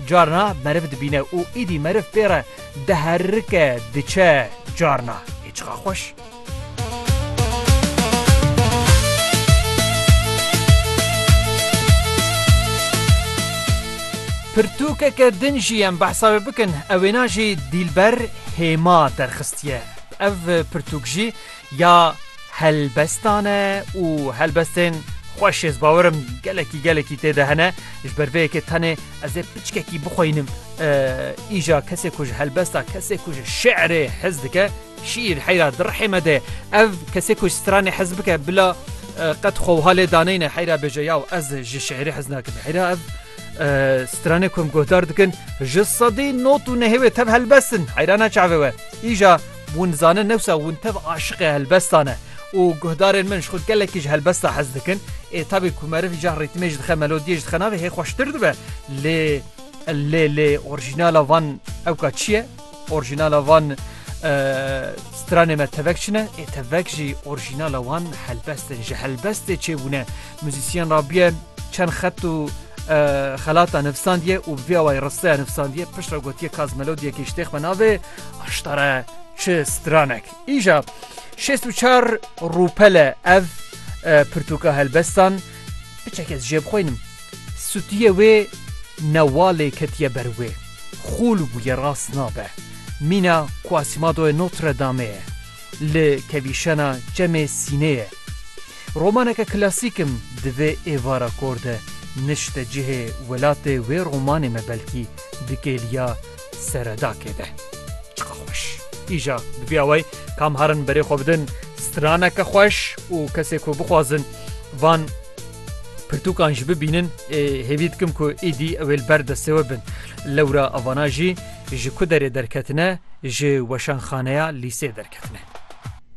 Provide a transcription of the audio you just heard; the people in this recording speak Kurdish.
Carna meriv dibîne û îdî meriv pê re diherike diçe carna ê çiqa xweş. Pirtûkeke din jî em behsa wê bikin, ew wêna jî Dîlber Hêma derxistiye. Ev pirtûk jî Ya helbestan e û helbestên xweş ez bawer im gelekî gelekî tê de hene ji ber vê yekê tenê ez ê piçkekî bixweynim îja kesê ku ji helbesta kesê ku ji şeirê hez dike şîîr heyra dirhê me de ev kesê ku ji stranê hez bike bila qet xweha lê daneyne heyra bêje ya ez ji şeirê hez nakim heyra ev stranê ku em guhdar dikin ji sedî not û nehê wê tev helbestin heyrana çavê we îja Hûn dizanin newsa hûn tev aşiqê helbestan e û guhdarên min ji xwe gelekî ji helbesta hez dikin. Ê tabî ku meriv cah rîtmê jî dixe melodiyê jî dixe navê hê xweştir dibe. Lê lê lê orjînala van ewka çi ye? Orjînala van stranê me tevek çi ne? Ê tevek jî orjînala wan helbest in. Ji helbestê çêbûne. Muzîsyen rabiye çend xet û xelata nivsandiye û bi vê awayî risteya nivsandiye. Piştre gotiye kaz melodiyekê ji têx me navê. Aştare çi stranek. Îja şêst û çar rûpele ev e, pirtûka helbestan biçek ez jê bixwînim. Sutiye wê newalê ketiye ber wê. Xûl bûye rast nabe. Mîna Quasimadoyê Notre Dameê ye. Li kevîşena çemê sînê ye. Romaneke klasîkim divê êvara kor de nişte cihê welatê wê romanê me belkî dikêliya seredakê de. Çiqa xweş! Îja bi vî awayî kam harin berê xwe bidin straneke xweş û kesê ku bixwazin van pirtûkan jî bibînin ê hêvî dikim ku êdî ew ê li ber destê we bin. Lewra avana jî ji ku derê derketine ji weşanxaneya lîsê derketine.